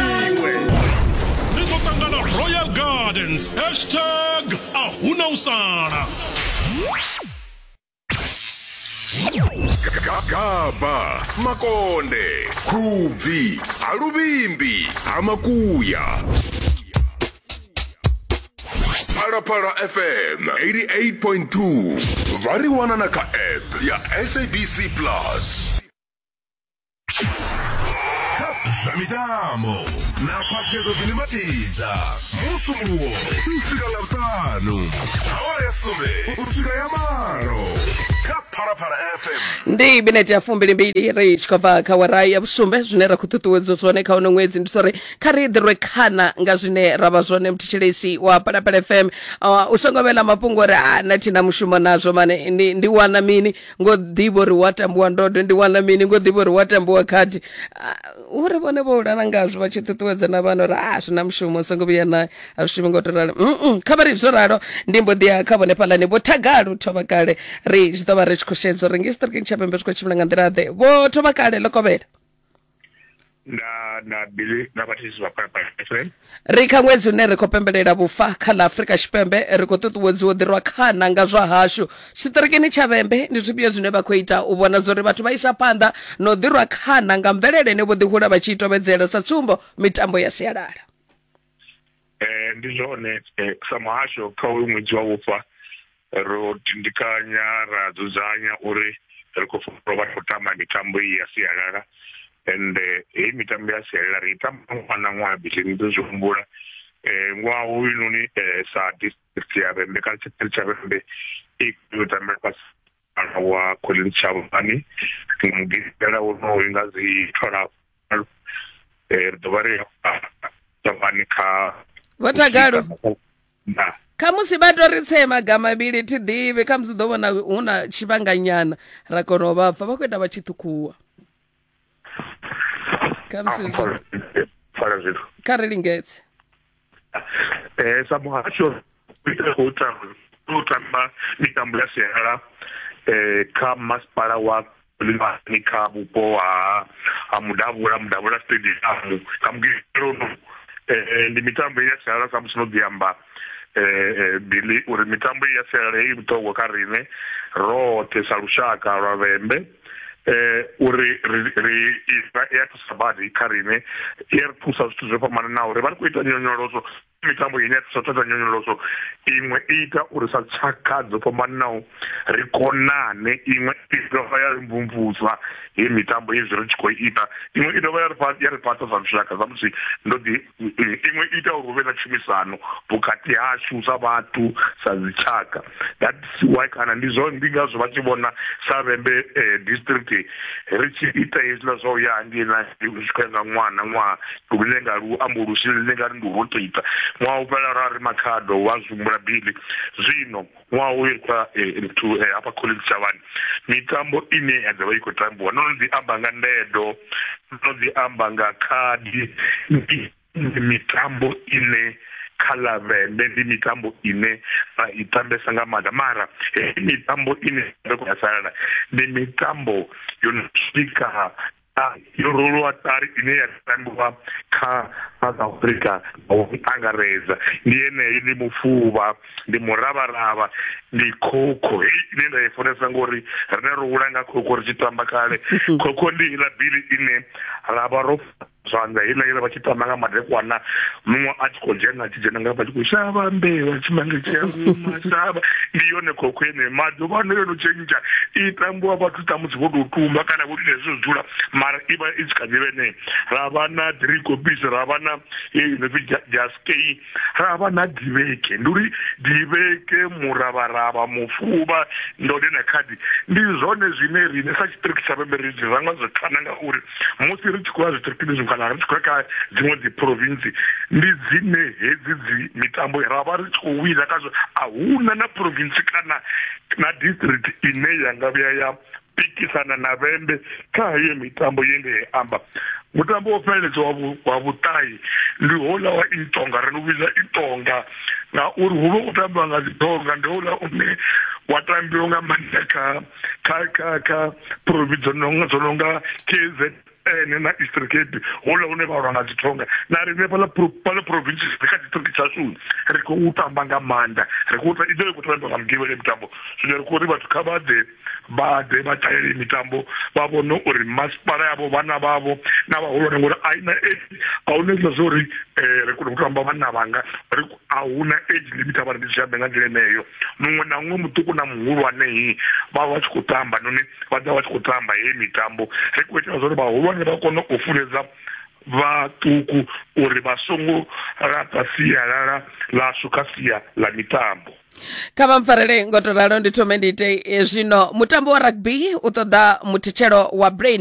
iwe ri ḓo ṱangana royal gardens hashtag a huna u sala gaba makonde khubvi ha luvhimbi ha makuya phalaphala fm 88.2 vha ri wana na kha app ya sabc plus zwa mitambo na khwaṱhisedzo dzine matidza musumbuwo u swika nga vhuṱanu awara ya sumbe u swika ya malo kha phalaphala fm ndi minete ya fumbilimbili ri tshi khou bva kha wara ya vhusumbe zwine ra khou ṱuṱuwedzwa zwone kha uno ṅwedzi ndi sori kha ri ḓirwe khana nga zwine ra vha zwone mthetshelesi wa palapala fm uh, u songo vhela mafhungo uri a na thina mushumo nazwo mane ndi, ndi wana mini ngo ḓivha uri wa tambiwa ndode ndi wana mini ngo ḓivha uri wa tambiwa khadi ah, uri vhone vho ulana ngazwo vha tshi ṱuṱuwedza na vhana uri a ah, zwi na mushumo songo vhuya na a zwi shumi ngo to ralo mm kha vha ri zwo ralo ndi mbo ḓiya kha vhone fhalani vho thagalo thoma kale ri zwi ḓo vha ri tshi khou shedza uri nge siṱirikini tsha pembe zwi khou tshimbila nga nḓila ḓe vho thoma kale ḽo kovhela nda nda bili nda vhathiswa kha palestine ri kha ṅwedzi une ri khou pembelela vhufa kha ḽa afurika tshipembe ri khou ṱuṱuwedziwa u ḓirwa khana nga zwa hashu tshiṱirikini tsha vhembe ndi zwifhio zwine vha khou ita u vhona zwa uri vhathu vha isa phanḓa na u ḓirwa khana nga mvelele ine vho ḓihula vha tshi i tovhedzela sa tsumbo mitambo ya sialala um ndi zwone eh, sa muhasho kha uyu ṅwedzi wa vhufa ro tindikanya ra dzudzanya uri ri khou funa vha khou tamba mitambo iyi ya sialala ende heyi mitambo ya sialala ri i tamba ṅwaha na ṅwaha bisheni ni ḓo zwi humbula um ṅwaha hoyunoni um sa district ya vhembe kana tshiṱiri tsha vhembe i khou tambela fhasi wa collins tshavhani mugidela wonoyu nga dzi twalafu eh, ri ḓo vha ri tavhani kha vho tagalo khamusi vha to ri tsee magama mavhili thi ḓivhi khamusi ḓo vhona hu na tshivhanganyana ra kona u vha pfa vha khou ita vha tshi ṱhukhuwa khamusi ah, kha ri lingedze eh sa muhasho u tamba u tamba mitambo ya sialala eh kha masipala wa limani kha vhupo ha ha mudavhula mudavhula stadium kha mugilelo eh ndi mitambo ya sialala sa musi no ḓi amba eh, eh bili uri mitambo ya sialala i vhuṱhogwa kha rine roṱhe sa lushaka lwa vhembe eh uri ri ri isa ya thusa badi kha rine i ri thusa zwithu zwo fhambananaho ri vha ri khou ita nyonyoloso mitambo ine ya thusa thata nyonyoloso iṅwe i ita uri sa tshakha dzo fhambananaho ri konane iṅwe i dovha ya ri mvumvusa he mitambo hezwi ri tshi khou ita iṅwe i dovha ya ri ya ri fhaṱa sa lushaka samusi ndo ḓi iṅwe ita uri hu vhe na tshumisano vhukati hashu sa vhathu sa dzitshaka that's why kana ndi zwo ndi ngazwo vha tshi vhona sa vhembe eh, district ri tshi ita hezwiḽa zwa u ya hangei na ri tshi khou ya nga ṅwaha na ṅwaha lune nga lu ambo lu sile ḽine nga ri ndi u rotaita ṅwaha u fhela ra ri makhado wa zwi humbula bili zwino ṅwaha uyu kha nthu eh, eh, eh, hafha college tshavhani mitambo ine ya ḓovha i khou tambiwa ndo no ḓi amba nga ndedo ndo no ḓi amba nga khadi ndi mitambo ine kha lavende ndi mitambo ine ra i tambesa nga maanḓa mara heyi mitambo ine ri khou ya salala ndi mitambo yo no swika yo roliwa ṱari ine ya tambiwa kha south africa nga u angaredza ndi yeneyi ndi mufuvha ndi muravharavha ndi khokho heyi ine nda i funesa ngori rine ro hula nga khokho ri tshi tamba kale khokho ndi iḽa bili ine ra vha ro zwanḓa heiḽa iḽa vha tshi tamba nga madekwana muṅwe a tshi khou dzhena a tshi dzhena nga vha tshi khou shavha mbeu a tshi mange tshi a guma shavha ndi yone khokho ene maḓuvha ano yo no tshentsha i tambiwa vhathu ṱamusi vho tou tumba kana vho ita hezwo dzula mara i vha i tshi kha ḓi vhe ne ra vha na three copies ra vha na yeyi no pfi jaskei ra vha na diveke ndi uri diveke muravharavha mufuvha ndode na khadi ndi zwone zwine rine sa tshiṱiriki tsha vhembe ri zwi ranga zwo khana ngauri musi ri tshi khou ya zwiṱirikini zwi kana ri tshi khou ya kha dziṅwe dzi province ndi dzine hedzi dzi mitambo ra vha ri tshi khou wina khazwo a huna na province kana na district ine ya nga vhuya ya pikisana na vhembe kha heyo mitambo ye nde amba mutambo wo fheleledza wa vhuṱayi ndi houḽa wa itonga ri u vhidza itonga ngauri hu vha u tambiwa nga dzitonga ndi houḽa une wa tambiwa nga maanḓa kha kha kha kha provi dzo no nga k z ene na eastern cape hola hune vha lwa nga dzithonga na riṋe fhala fhala provinces ri kha district tshasuni ri khou tamba nga maanḓa ri khou i ḓo i khou tambwa nga mugivhele mitambo zwino ri khou ri vhathu kha vha ḓe vha ḓe vha ṱalele mitambo vha vhone uri masipala yavho vhana vhavho na vhahulwane ngori a ina a huna hezwiḽa zwa uri um ri kone u tamba vhanna vhanga a hu na age limit a vha ri ndi zwi ambe nga nḓila eneyo muṅwe na muṅwe muṱuku na muhulwane hi vha vha tshi khou tamba noni vha ḓa vha tshi khou tamba heyi mitambo ri khou itela zwauri vhahulwane vha kone u funedza vhaṱuku uri vha songo laṱa sialala ḽashu kha sia ḽa mitambo kha vha mpfarele ngo to ralo ndi thome ndi ite eh, zwino mutambo wa rugby u ṱoḓa muthitshelo wa brain